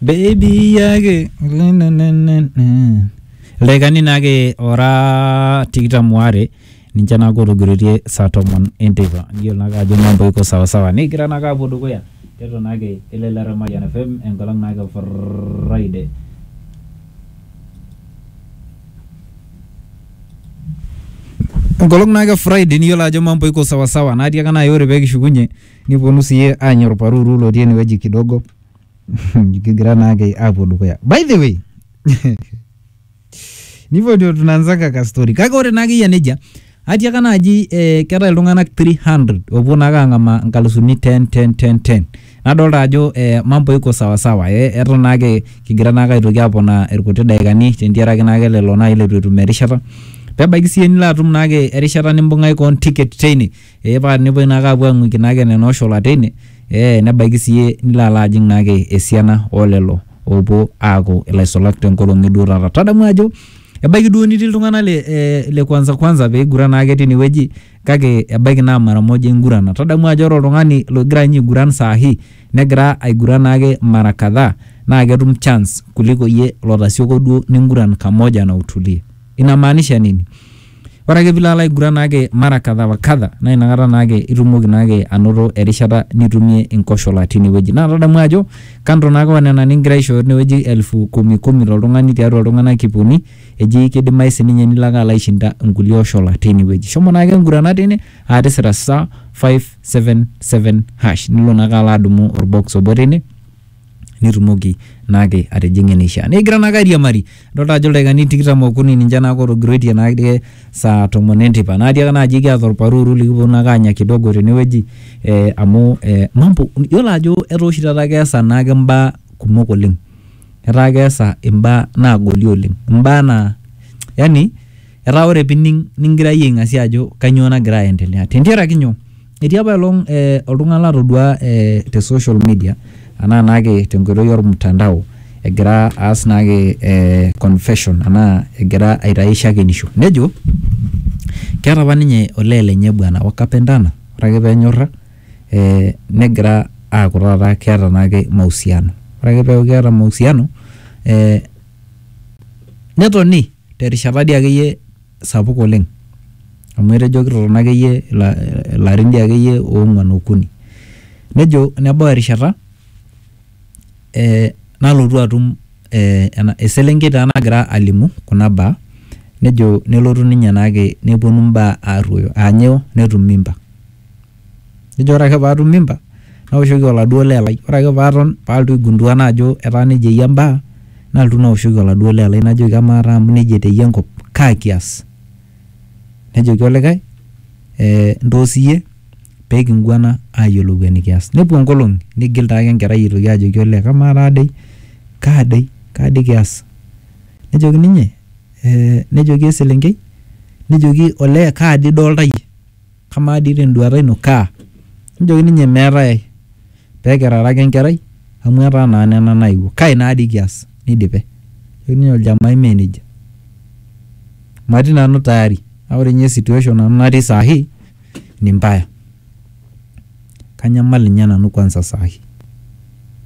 Baby yake ildaikani naake ora tikitam waare ninche naake otogiroitie saa tomon enteipa niyiolo naake ajo mambo iko sawasawa nikigira naake aapuo dukuya tiatua naake elelero e Mayian FM enkolong naake e Friday enkolong naake e Friday niyiolo ajo mambo iko sawasawa natii ake naai ore pee kishukunye Nipuonu sii aanya olparuru lotii enewueji kidogo kigira naake apuo dukuya. By the way, nipotu tunaanzanga ka story kake ore naake eyia nejia atiaka naaji eh, keetae iltung'ana 300 oopuo naake ang'amaa nkalusuni 10 10 10 10 nadolta ajo eh, mambo iko sawa sawa eh, eton naake kigira naake aitoki aponaa irkuti daikani tentiaraki naake lelo naai leitu etum erishata pebaiki siyie nilo atum naake erishata nimbung'aki koon ticket teine ee paa nepuoi naake apuo aing'uiki naake nena ooshola teine ee nebaiki siyie nilo alo ajing naake esiana olelo oopuo aaku ilaisulak tenkolong eduo taata. Tadamu ajo ebaiki duo nitii iltung'anak le, eh, le kwanza kwanza peiguran naake tinewueji kake ebaiki naa mara moja ingurana. Tadamu ajo ore oltung'ani logira ninye aiguran saa hii negira aiguran naake mara kadhaa naa ketum chance kuliko iyie lotasioko duo ninguran kamoja na utulie. Inamaanisha nini? Ore ake pilo alo aiguran naake mara kadha wa kadha naa inakata naake itumoki naake anoto erishata nitumie inkoshola tine wueji. Naa tadamu ajo kando naake o nena ning'ira aishooyo tine wueji elfu kumi kumi to ltung'ani tiatua iltung'anak iip uni, eji kidimayu sininye nilo ake alo aishinda nkulie oshola teine wueji. Shomo naake ing'urana teine aa tisira star five seven seven hash nilo naake alo adumu or box obo teine nitumoki naake atijing'a eneishaa. Nikigira naake airiamari, idolta ajo ildaikani tikitam okuni ninche naake otogiroitie naake saa tomon enteipa. Naa tiakata naaji kiata olparuuru likipwonu naake aanya kidogo tenewueji eh amu eh mambo iyiolo ajo etaa oshi taata keesa naake imbaa kumok oleng. Etaa keesa imbaa naagoli oleng, imbaa naa yani etaa ore piining nikigira iyie aing'asia ajo kanyoo nagira aendelea. Tentiaraki nyoo? Etii apa elong eh, oltung'ani latoduaa eh, te social media anaa naake tenkoitoi olmtandao egira aas naake eh, confession anaa egira aitai shakenisho nejo keata apa ninye olee lenye bwana wakapendana ore ake penyorra eh, negira aaku taata keata naake mahusiano ore ake peaku keata mahusiano eh, netoni terishata dii akeyie sapuk oleng amu etejo kitotona akeyie ilarin dii akeyie oong'uan okuni. Nejo nebau erishata eh nalotu atum eh eselenkei taa nagira alimu kuna baa nejo nelotu ninye naake nepuonu imbaa arruoyo aanyo netum mimba. Nejo ore ake paatum mimba naoshoki oladuo lee lai. Ore ake paaton paaltu aigundua naa ajo etaa neija eyia mbaa naltu naoshoki oladuo lee lai najoki amaa taa amu neija eteyia enkop kaa kias? Nejoki olikae ee ntoo siyie pee kinguana aayiolou enikias. Nepuo nkolong'i nigil taake enkerai aitoki ajoki olee kamaa taa dei, kaa dei, kaa dei kias? Nejoki ninye ee nejoki eselenkei nejoki olee kaa dei idolita iyie? kamaa dii tenduata ino kaa? Nejoki ninye meetae ai pee kirara ake enkerai amu etaa naa nena naewuo. Kai naa dii kias? Neidipe. Nejoki ninye oljamai mee nejia. Matii nanu tayari kake ore ninye situation nanu natii saa hii ni mbaya. Kanyamal ninye nanu kwanza saa hii.